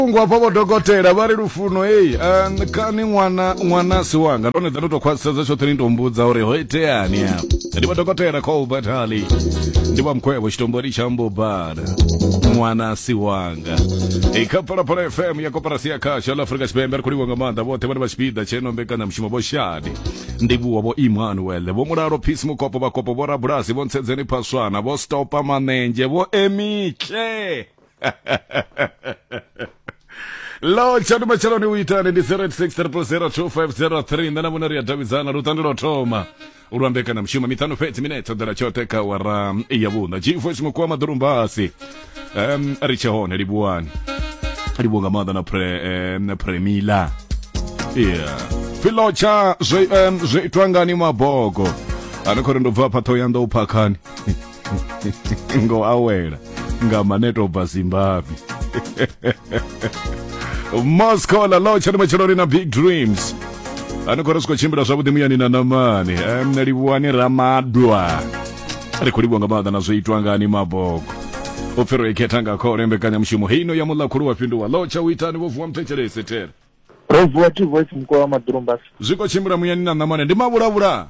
vhulungu hafha vho dokotela vha ri lufuno heyi kani ṅwana ṅwana si wanga ndone dza ndo tou khwaṱhisedza tshoṱhe ni tou mbudza uri ho iteani afho ndi vha dokotela khou batali ndi vha mkhwevho tshitombori tsha mbobala ṅwana si wanga i kha phalaphala fm ya koporasi ya khasho la afurika tshipembe ri khou livha nga maanḓa vhoṱhe vhane vha tshipiḓa tsheno mbekanyamushumo vho shadi ndivhuwa vho emmanuel vho mulalo phisi mukopo vhakopo vho rabulasi vho ntsedzeni phaswana vho stopa manenzhe vho emitle lo tshatu matshelo ni u itani ndi 086002503 nṋe na vhone ri a davhidzana lutando lwa thoma u lwa mbekanyamushumo miṱanu fhedzi mine ṱhoḓela tshoṱhe kha wara ya vhuṋa jifo tshiṅwe kuwa maḓulumbasi um, ri tshe hone livhuwani livhuwa nga maanḓa na pre, um, na premila yeah. filo tsha zwe um, zwe itwa ngani mabogo ano khori ndo bva phatho ya ndo u phakhani ngo awela nga maneto bva zimbabwe moscow la lotsha ndi matsheloni na big dreams ani khou ri si khou tshimbila zwavhuḓi muyani na namani em livhuwani ramadwa ri khou livhuwa nga maanḓa na zwo itwa ngani mabogo u pfhi ro ikhetha nga khole mbekanyamushumo heino ya muḽa khulu wa fhinduwa lotsha u itani vho vuwa muthetshelese tere Praise the Lord, voice mkuu wa Madurumba. zwi khou tshimbila muyani na ṋamane ndi mavhulavhula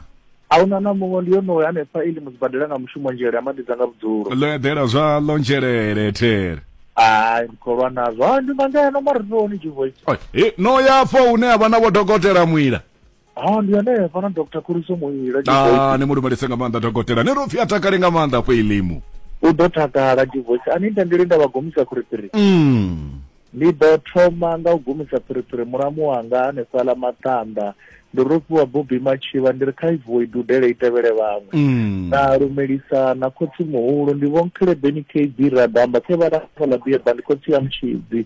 Ahuna na muṅwe ndi yonoyo hanefha ili muzibadela nga mushumo nzhele amadidza nga vhudzulo. ḽo eḓela zwa ḽo nzhelele there Ai mkholwa nazwo. Ha ndi nga ngeno maritoni G voice. Oi, he, no ya afho hune ha vha na vhodokotela mwila ha ndi hanefha na dr khuriso muila ah, ni mu lumelise nga maanḓa dokotela ni ro pfhi a takale nga maanḓa afho ilimu u ḓo takala divoice a ni tendeli nda vha gomisa phiriphiri mm. ndi ḓo thoma nga u gumisa phiriphiri mulamu wanga hanefhaḽa maṱanda ndi ro fhiwa bobi matshivha ndi ri kha ivuwe i dudele i tevhele vhaṅwe mm. na lumelisa na khotsi muhulu ndi vho nkhelebeni kb radamba khe vha lafhaḽa biyeba ndi khotsi ya mutshidzi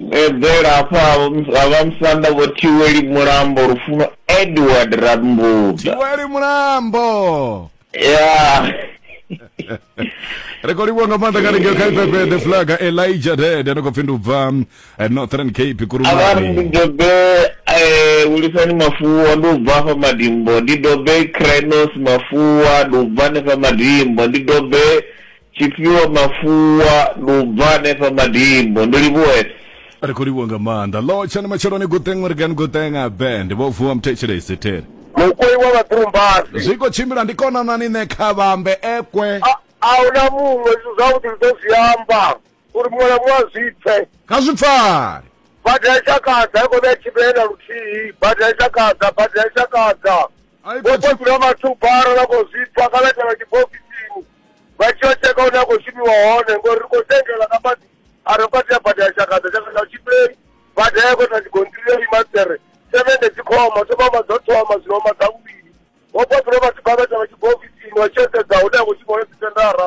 Eḓela hafha ha vha musanda vho Thiweli Mulambo Lufuno Edward Rambuḓa. Thiweli Mulambo. Yeah. ri khou livhuwa nga maanḓa kha lingeo kha ifefe the flag elijah dad ano khou pfi ndi u bva eh, northern cape kurumani ndi dobe eh, hulisani mafuwa ndi u bva fha madimbo ndi dobe crenos mafuwa ndi u bva nefha madimbo ndi dobe Tshifhiwa Mafhuwa, Ndi u bva hanefha Madimbo. Ndi livhuwe. Ri khou livhuwa nga maanḓa. Ḽo tshani matsheloni Guṱeṅwe ri gani Guṱeṅa Band vho vuwa muthetshelesi theri. Mukoi wa vhatrumbasi. Zwi khou tshimbila ndi konanani nṋe kha vha ambe ekwe. A, a hu na muṅwe izwi zwavhuḓi ndi ḓo zwi amba. uri muṅwe na muṅwe a zwi pfe kha zwi pfale bada ya shakadza i khou vha tshimbile na luthihi bada ya shakadza bada ya shakadza vhokodzula vhathu bara vha khou zwi pfa kana tshana tshibokisini vha tshi yo tsheka hune a khou shumiwa hone ngori ri khou tengela nga maḓi a ri vhukati ya bada ya shakadza shakadza tshimbile bada ya khou na tshigontirio imatsere sevende dzi khoma thoma ma dzo thoma zwino ma dza vhuvhili vhokodzula vhathu bara tshana tshibokisini vha tshi yo sedza hune a khou shumiwa hone dzitendara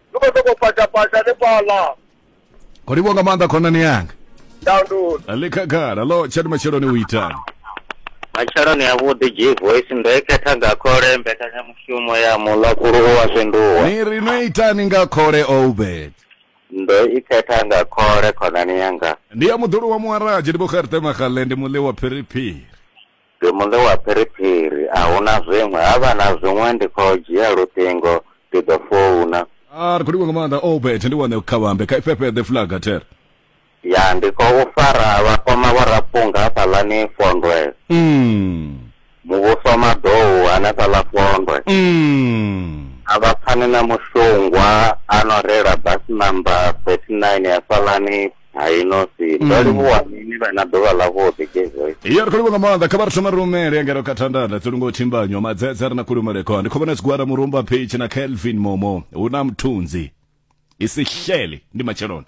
ndi khou sokou patapata hanefhaḽa o livho nga maanḓa khonani yanga download ḽi khagala lo tshani matsheloni u itani matsheloni a vhuḓi g voice ndo i khetha nga khole mbekanyamushumo ya mulakulu u wa fhinduwa ni ri no itani nga khole obed ndo i khetha nga khole khonani yanga ndi ya muḓulu wa muharaje ndi vho gerte magale ndi muḽe wa phiriphiri Ndi muḽe wa phiriphiri a huna zwiṅwe ha vha na zwiṅwe ndi kho dzhia luṱingo ndi ḓo founa. Aa ri kho livhuwa nga maanḓa Obert ndi wane khavhambe kha i fhefheḓe flag ter. Ya ndi khou fara vhakoma vho rapunga hafhaḽani fondwe. Umm. Muvhuso maḓou hanefhaḽa fondwe. Umm. A vha pfani na mushungwa ano reila bus number 39 hafhaḽani. Hai nosi ndo livhuwa mini vha na ḓuvha ḽa vhuḓi gezoy. Iyo ri khou livhuwa nga maanḓa kha vha ri thoma rumele ngeno kha thandanda dzi lungo thimbanyo madzedze ri na kulumelekho ndi khobona tshigwada murumba phichi na Kelvin Momo hu na mthunzi i si xele ndi matsheloni.